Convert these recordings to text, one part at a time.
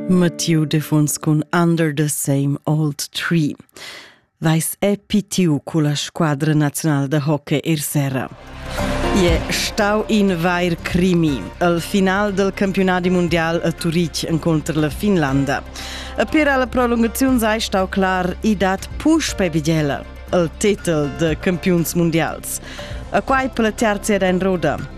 Mattiu defuns cun Under the Same Old Tree. Vais è pitiu culla squadra nazional de hockey ir serra. Je stau in vair crimi, al final del campionati mondial a Turitg incontro la Finlanda. E per alla prolungazione sei stau clar i dat puspe vigela, al titel de campions mondials. A quai per la terza era in roda.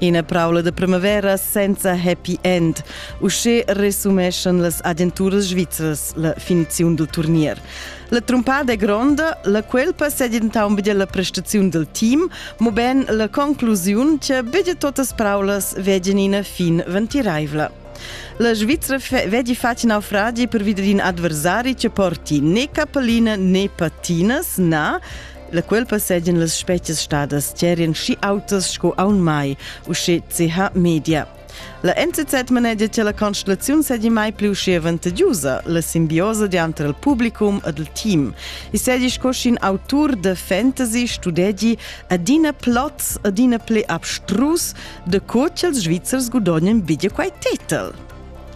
Ina praula da primavera senza happy end. Uschè resumeschan las agenturas svizras la finiziun dal turnier. La trumpada è gronda, la cuelpa sedentà un la prestaziun del team, mo ben la conclusiun che bitte totas praulas veggen ina fin ventiraivla. La Svizzera vedi facin naufragi per videre in adversari che porti né cappellina né patinas, na, La cuolpa seigien las spezias stadas tgerien schi autas sco aun mai, usche CH Media. La NZZ manegia che la constellaziun seigi mai pli uschi avantagiosa, la simbiosa dianter il publicum ed il team. I seigi sco sc'in autur de fantasy studegi adina plots, adina pli abstrus de co ch'ils Svizzers gudognen biglia quei tetel.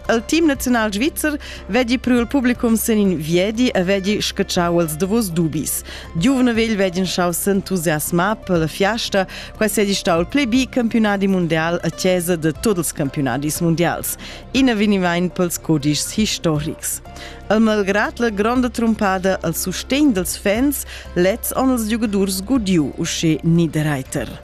Il team naziunal svizzer vegli priu il publicum sin in viedi e vegli scatschau els davos dubis. Giuvne vegl vegin schau s'entusiasmar per la fiasta, quai sedi stau il pli bi campionadi mondial a chiesa de tots ils campionadis mondials. Ina venivain pels codischs historics. El malgrat la gronda trumpada al sustegn dels fans, lets on els giugadurs gudiu usce Niederreiter.